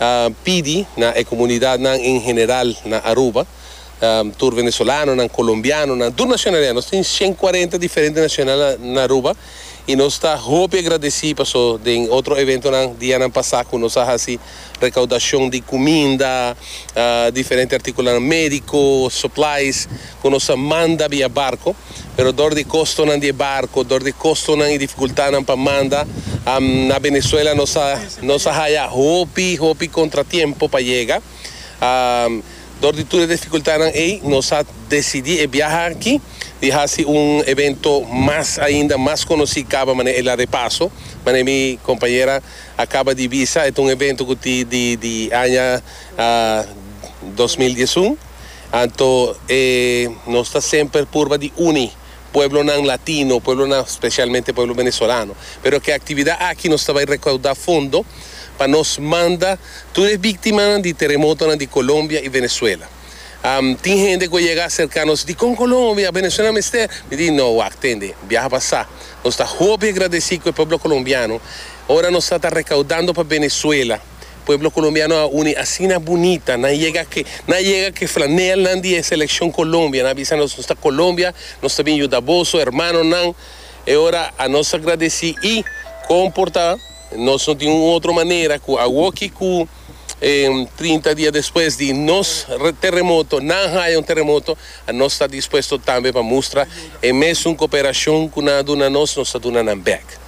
a pidi na e comunidadnan en general na Aruba, tur venezolanonan, colombianonan, tur nacionalidad, nos tin cien cuarenta diferente nacionalidad na Aruba y nos ta hopi agradeci paso den otro eventonan dianan pasa cu nos a haci recaudacion di cuminda, diferente articulonan medico, supplies, cu nos a manda via barco. pero dor di kostonan di e barko, dor di kostonan i difikultadnan pa manda, na Venezuela nos a nos a haya hopi hopi kontratiempo pa yega. Dor di tur e difikultadnan ei nos a desidí e biaha aki di hasi un evento mas ainda mas konosí kaba manera el a repaso, manera mi kompañera a kaba di bisa, e ta un evento ku tin di di aña dos mil diesun. Anto e nos ta semper purba di uni pueblonan latino, pueblonan specialmente pueblo venezolano. Pero ke actividad aki nos ta bay recauda fondo pa nos manda tur e victimanan di teremotonan di Colombia y Venezuela. Am, tin hende cu a yega acerca nos, Dicon Colombia? Venezuela mester? Mi di, No, wak, tende, biaha pasa. Nos ta hopi agradeci cu e pueblo colombiano, ora nos ta ta recaudando pa Venezuela, Pueblo Colombiano a uni asina bunita, nan yega ke nan yega ke flanelnan di e seleccion Colombia, nan a bisa nos nos ta Colombia, nos ta bin yuda boso hermanonan, e ora a nos a gradeci y con por ta nos no tin un otro manera cu awoki cu trinta dia despues di nos terremoto, nan haya un terremoto, a nos ta dispuesto tambe pa mustra e mesun cooperacion cu nan a duna nos, nos ta duna nan bek.